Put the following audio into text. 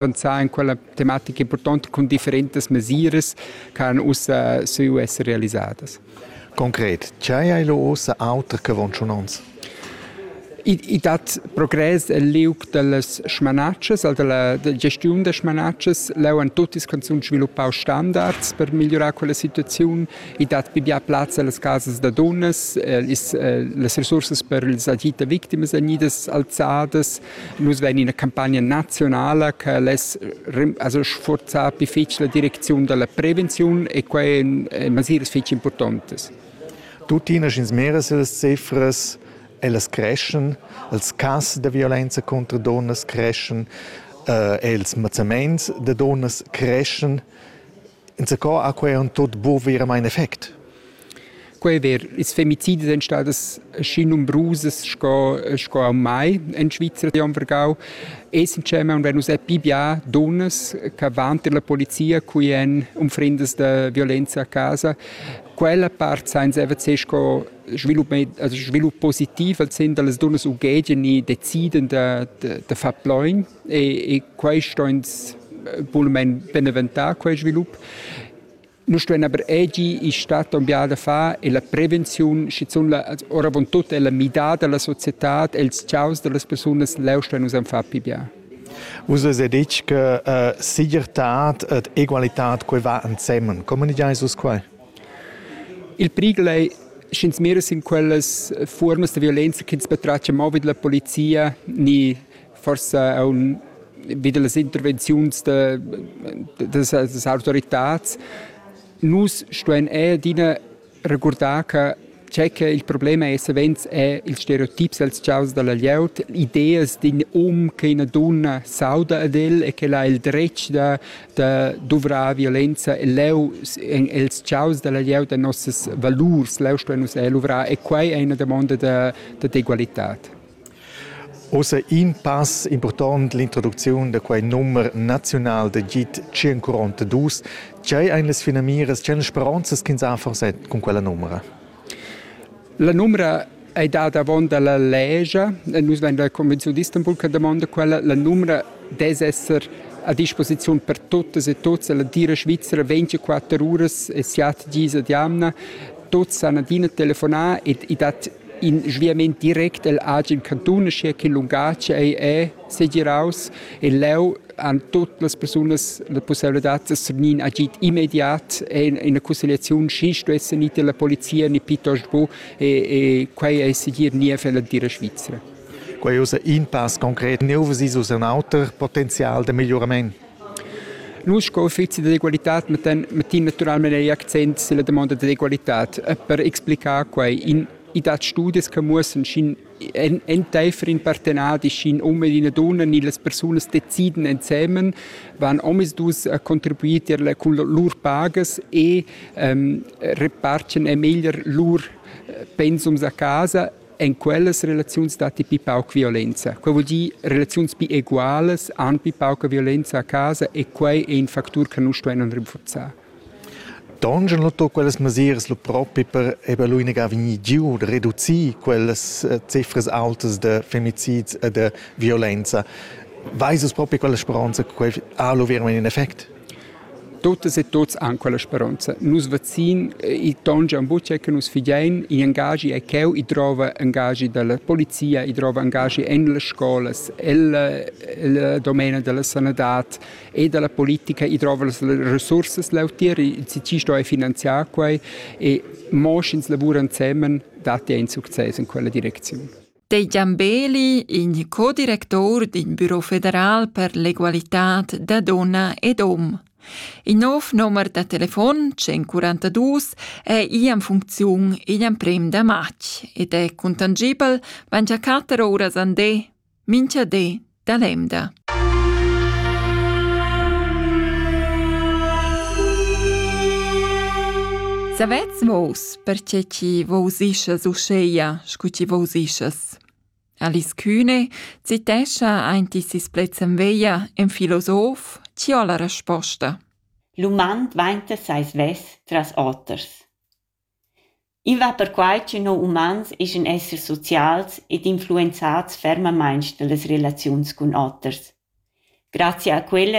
pensar in quella tematica importante con differentes mesiras che han ussa su essere realisadas. Konkret, c'è hai lo ossa auter che von schon ons? I dat progress el liug dallas schmanatschas, al dalla gestiun da schmanatschas. Leu han tutti canzun sviluppau standards per migliurar quella situaziun. I dat pigliar plaz allas casas da dunnas, eh, is, eh, las resursas per ils agita victimas vegnidas alzadas. Nus vein ina campagna nazionala che less also sforzar difficile la direcziun della prevenzione e quei ein masiras fetg importantes. Tuttina sch'ins mira las cifras, ellas creschen, els cass da violenza contro donnas creschen, eh, els mazzaments da donnas creschen. Inzaco ha quei aunc tut buc veramein effect. Quei è der. Ils femicidi sind stadas schi numerusas sco, sco auch mai in Schweizer am Vergau. Essenschema und wenn uns è bibia donas che vanter la polizia qui en umfrindas de violenza a casa, quella part sein sie einfach sco svilup, also svilup positiv, als sind alles donas ugedien i deciden de, de, de far plein. e, e quai sto ins bulmain beneventar, quel svilup. Nous stuein aber egi in stadt on biada fa e la prevenziun, schizun la, oravontut è la midada della società, els ciaus delle persone leu stuein us far pi bien. Vus è detg che uh, sigertad ed egualitad quei va ensemen. Comuniceis vus quai? Il prigel è sch'ins mira in quellas formas de violenza che ins betraccia mo vid la polizia ni forse auch wieder las intervenziuns de, des, des Autoritäts. Nus stuen eh dina regurdar che c'è che il problema è savens è il stereotips als chaus dalla glieud, ideas din um che una donna sauda ad el e che ha il dretg da, da duvrar violenza e leu els chaus dalla glieud a nossas valurs, leu stuen nus eh luvrar e quai è una domanda de, de d'egualità. Ussa in pass impurtont l'introducziun da quei numer naziunal d'agid 142. Tgei ein las finamiras, tgei speronzas ch'ins ha forset cun quella numera? La numera ei dada avon dalla legia e nus vein la convenziun d'Istanbul che damonda quella. La numera des esser a disposiziun per tuttas e tuts. La dira svizzera 24 uras e siat dis ad jamna. Tuts han adina telefonà e, e dat In sviament direct el agen cantun, aschia che lungatg ei è segiraus e leu han tut las persunas la possibilitad da svenir agid immediat e in una constellazione si stuesse ni della polizia ni piuttosto bu e, e quei ei segir niev ella dira Svizzera. Quei ussa in pass concret neu si sus un auter potenzial de migliorament. Nus sco uffizi d'egualitad mettan, mettin naturalmein ei accent silla damonda d'egualitad e per explicar quei in i dat studias che muossan sc'in enteifer in partenadi sc'in um ed ina dunna ni las persunas deciden ensemen van omisdus a contribuir tier cun lur pagas e ähm, repartgen e meglier lur pensums a casa En quellas relaziuns datti pi pauc violenza. Quai vuol dir relaziuns pi egualas han pi pauca violenza a casa e quai è in factur che nus stuevan rinforzar. Dongen lo to quellas mesiras lo propi per eba l'unica vegnir giu da reducir quellas eh, cifras altas de femicids e de violenza. Weiß es propi quella speranza che quel ha lo veramente in effect? Tuttas e tuts han quella speronza. Nus vacin il ton Gian Butia che nus fidein, igl engaschi è cheu, i drova engaschi dalla polizia, i drova engaschi en las scolas, el domena della sanadad e della politica, i drova las resursas lautier, ci sto e finanziar quei e mo sch'ins lavura ensemen dat ei in success in quella direcziun. Dei Giambeli, in co-director d'in büro federal per l'egualitad da donna ed hom. Il nov nomer da telefon 142 è i en funcziun igl emprem da matg ed è contangibel van già quatter oras andé, mincha dé da l'emda. Savets vos, perche chi vos ischas uscheia, scu chi vos ischas? Alice Kühne citescha ainti sis plezzan veia en filosof ci ho la resposta. L'uman dvainta seis vess tras oters. I va perquai ch'ün no umans eschan essers socials ed influenzats fermamaing da las relaziuns cun oters. Grazia a quella